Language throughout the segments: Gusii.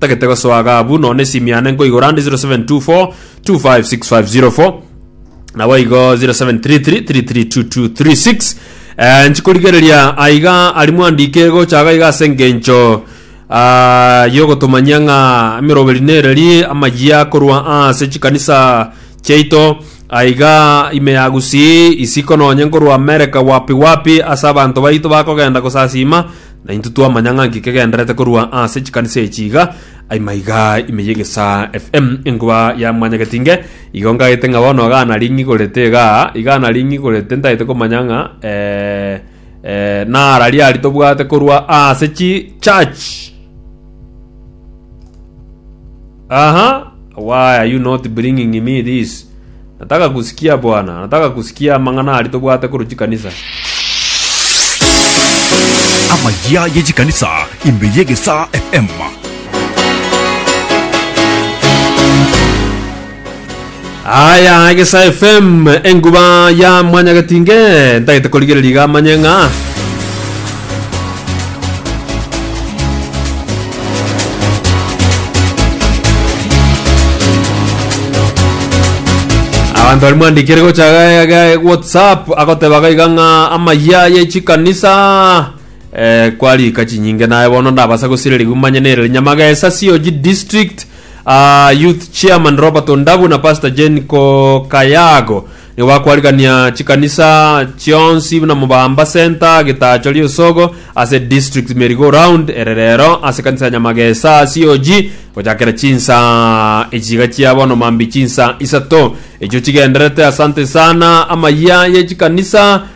Tagete gosoa iga abwo noone esimi yane nkoigora ande 0724 256504 nabo igo 0733332236 eh, nchikorigereria aiga ari mwandike gochaga iga ase engencho ah, yogotomanyia ng'a emeroberi nereri amayia korwa ase chikanisa chiaito aiga ime ya gusii isiko nonye nkorwa amerika wapi wapi ase abanto baito bakogenda gosasima Na intwe twamanya ng'a nki kegenderete korwa ase chikanisa echi iga, aima iga ime y'egesaa FM enkuba ya mwanyagetinge, igo ngagete ng'a bono iga naring'igorete igaa, iga naring'igorete ntagete komanya ng'a eh, eh, nara riari tobwate korwa ase chi church. Aha, why are you not bringing me this? Nataka kusikia, Bwana, nataka kusikia amang'ana aria tobwate korwa chikanisa. Amayia ye chikanisa ime y'egesaa FM. Aya Egesa FM enguba ya mwanyagetinge ntagete korigereria iga amanye ng'a abanto bari mwandikire gocha ga- ga- whatsapp agoteba ga iga ng'a amaya ye chikanisa eh, kwarika chinyinge naye bono ndabasa gosireri gumanye nere nyamagesa sioji district Aa, youth chairman Robert Ondabu na Pastor Jane Kokayago nigo bakwarigania chikanisa chionsi buna Mubamba Centre, Getacho, Riosogo ase district meri go round ere rero ase kanisa ya Nyamagesa COG gochakera chinsa echiga chia bono mambi chinsa isato echio chigenderete. Asante sana amayia ye chikanisa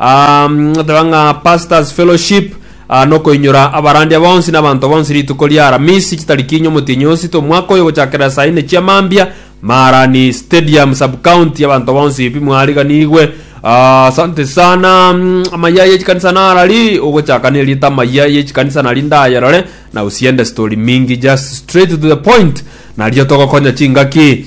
Um, ateba ng'a pastors fellowship ah, nokoinyora abarandia bonsi n'abanto bonsi rituko ria aramisi chitariki inye omotienyi osito omwaka oyo gochakera saa ine chia mambia marani stadium subcounty abanto bonsi pi mwariganigwe Ah, asante sana mm, amaya yechikanisa narari ogochaka nerita amaya yechikanisa nari ndayerore na usiende story mingi just straight to the point nario togokonya chingaki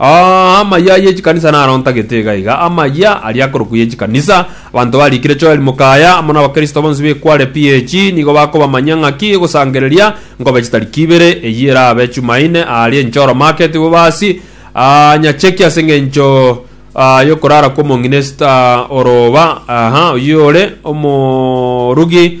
Aa, amayia ye chikanisa narontagete iga iga, amayia aria akorokwa ye chikanisa. Abanto barikire Joel mokaya, amo n'Abakristo bonsi b'ekware PAG, nigo bakobamanyia ng'aki gosangereria nkobe chitariki ibere. Eyio erabe Chumaine, aaria enchoro market, bobasi, aa, nyacheki ase engencho aa, y'okorara kw'omong'ina Esta Orooba, aha, oyio ore omorugi,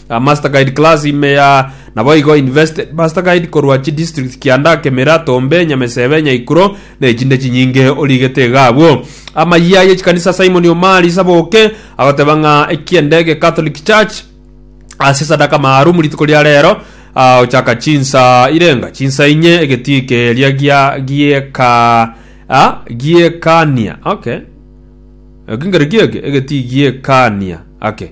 A Masterguide class ime ya naboigo invested Masterguide korwa chi district Kianda, Kemira, Tombe, Nyamesebe, Nyaikuro na echinde chinyinge origete iga abwo. Amayia y'echikanisa Simon Omari Saboke agoteba ng'a eki'endege Catholic Church ase esadaka maarumu rituko ria rero ah, ochaka chinsa irenga chinsa inye egetiike eria gia gieka ah, giekania okay ekingero gieke egeti giekania ake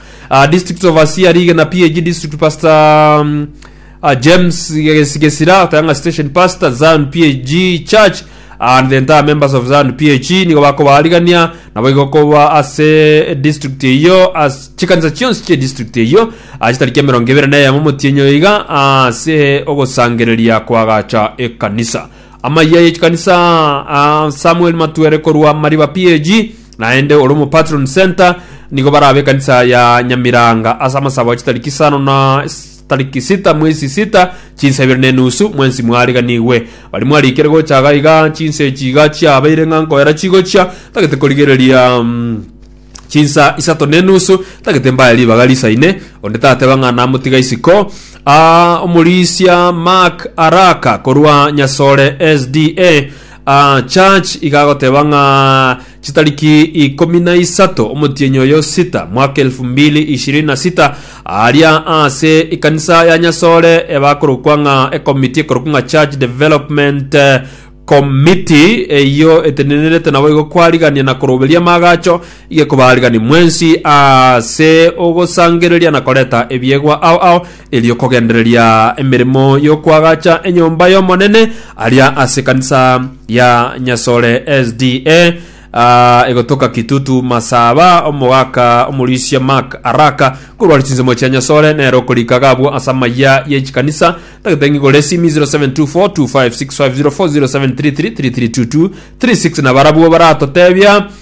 Uh, district overseer rigena PAG district pastor um, uh, James Ges- Gesira Tayanga station pastor Zion PAG church and the entire members of Zion PAG nigo bakobarigania nabo igokoba ase district eyo as chikanisa chionsi chie district eyo uh, chitariki emerongo ebere na eyemo motienyo iga ase ogosangereria kwagacha ekanisa amaiya yechikanisa uh, Samuel Matwere korwa Mariba PAG Naende ore omopatron center nigo barabe ekanisa ya Nyamiranga ase amasabo a chitariki isano na tariki sita mwezi sita chinsa ibere na enusu mwensi mwariganigwe bari mwarikire gocha iga iga chinsa echi iga chiabeire ng'a nkoera chigochia tagete korigereria mm, chinsa isato na enusu tagete mbaya ribaga risaine onde tateba ng'a namotiga isiko Ah, omorisia mark araka korwa nyasore sda Ah, church igagoteba ng'a chitariki ikomi na isato omotienyi oyo sita mwaka elfu mbili ishirini na sita aria ase ekanisa ya nyasore ebakorokwa ng'a ekomiti ekorokwa ng'a church development eh, committee eyo etenenerete naboigo kwarigania na koroberia amagacho igekobarigani mwensi ase ogosangereria na koreta ebiegwa ao ao Erio kogendereria emeremo y'okoagacha enyomba y'Omonene aria ase ekanisa ya Nyasore SDA, ah, egotoka Kitutu Masaba, omogaka omorisia Mark Araka, korwa ase chinsemo chia Nyasore, nere okorika gabwo ase amayia ye chikanisa. Tagete ng'igo resimi 0724256504 0733332236 na barabwo baratotebia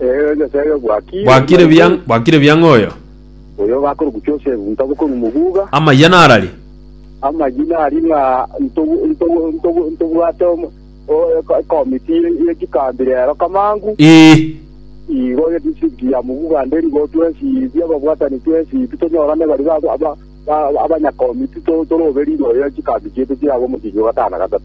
Ee, Nyasae obwakire. Bwakire buya, bwakire buya ng'oyo. Oyo ogakora ogochia ase egunta bokorwa omoguga. Amayia narari. Amayia nari ng'a ntobu- ntobu- ntobu- ntobwate omo- o- eko- ekomiti ye- ye chikambi rero kamangu. Ee. Igo edistrict ya Muguga nde nigo twesibia ababwatani twesibia tonyorane baria ba- ba- ba- abanyakomiti to- torobe rirorio chikambi chiaito chiabe omosinyo gatano na gatato.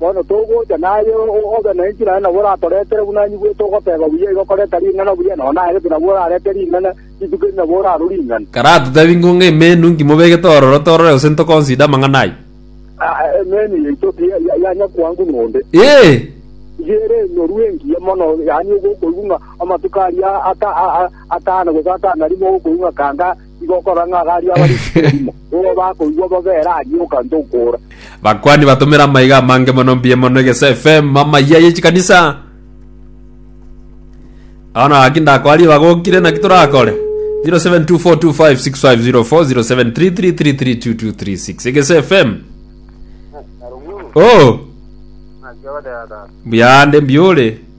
Bono togocha, naye obe nenchera aye nabo oratoretere buna inwe bwete ogoteba buya igo koreta ring'ana buya, nao naye gete nabo orarete ring'ana, rituko eri nabo orarwe ring'ana. Karatotebi ng'o ng'a emenu nkimobegete ororo torore gose ntokonsida amang'ana ayio? Aa, emenu yaito ti ya- ya- ya nyakwangu nonde. Ee! Iga ere enyoru engiya mono, yaani ogokoigwa ng'a amatuko aria ata- a- a- atano gose atano arimo ogokoigwa ng'a kanga Tigokora ng'a iga aria abarikire erimo, nigo bakoigwa bobe ere aria ogante okoora. Bakwani batomera amaiga amange mono mbuya mono egesa FM amayia yechikanisa Bono gaki ndakora riba gokire naki torakore 0724256504 0733332236 egesa FM Oh Naki ogoteata. buya ande mbiore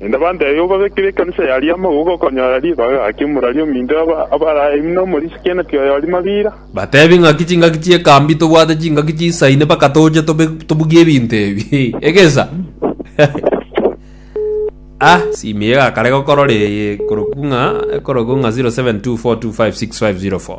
Naende bantebie kobabekera ekanisa yaria amaboko okonyora ribaga gaki omorwari ominto abarae buna omorisia kenati oyori mabira. Batebie ng'aki chingaki chi'ekambi tobwate chingaki chisaine mpaka toche tobugie ebinto ebi. Egesa. Ah, simu eye egakare gokorora eye ekorokwa ng'a ekorokwa ng'a 0724256504.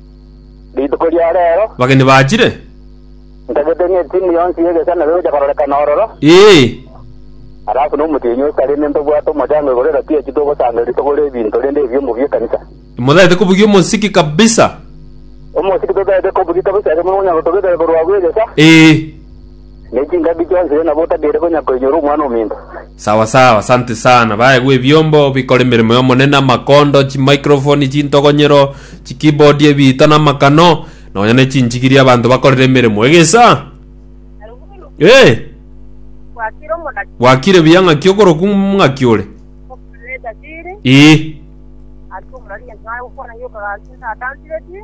Rituko ria reero Abageni bachire? ntagete ng'a etimu yonsi y'egesanero egocha kororekana ororo, Ee. alafu na omotienyi o Salemi ntobwate omochango igoro ero twiechi togosanga rituko ri'ebinto rende ebiomo bi'ekanisa. Imotagete kobugia omosiki kabisa. Omosiki totagete kobugia kabisa ekero mokonyara gotogitera korwa abwo egesa. Ee. Ne chingaki chi'onsiria nabo otagere konya koinyora omwana ominto. Sawa sawa, asante sana. Baegwe ebiombo bikora emeremo y'Omonene, amakondo, chimicrophone, chintogonyero, chikeyboard, ebiito na amakano, nonya ne chinchigiria abanto bakorera emeremo. Egesa! Eh! Gwakire omonaki Gwakire buya ng'aki okoroku ng'aki ore? okorere etasiri Ee. ase omonaki gento nare gokwana gioka gaki ntatansiretie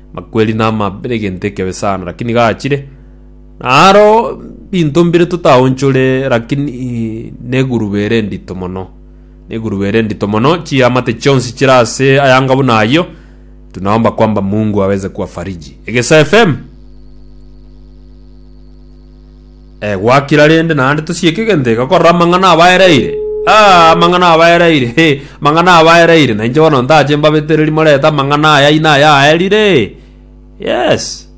Makweri namabe negento ekebe sana, lakini gachire. Naro binto mbire totaonchore, lakini neguruba ere endito mono. Neguruba ere endito mono, chiamate chionsi chire ase ayanga buna ayio. Tunaomba kwamba Mungu aweze kuwafariji. Egesa FM. Eh, gwakira rende, naende tosieke egento iga korora amang'ana abaereire. Ah, amang'ana abaereire, he, amang'ana abaereire, na inche bono ndache mbabetereri morete amang'ana aya ina aya aerire. Yes.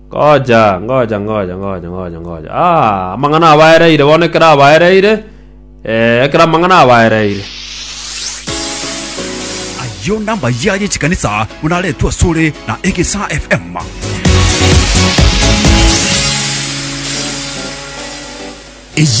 Ngoja, ngoja, ngoja, ngoja, ngoja, ngoja. Ah, amang'ana abaereire, bono ekero abaereire, Ee, ekero amang'ana abaereire. Ayio nambayia ye chikanisa buna aretwe asore na Egesaa FM. Eye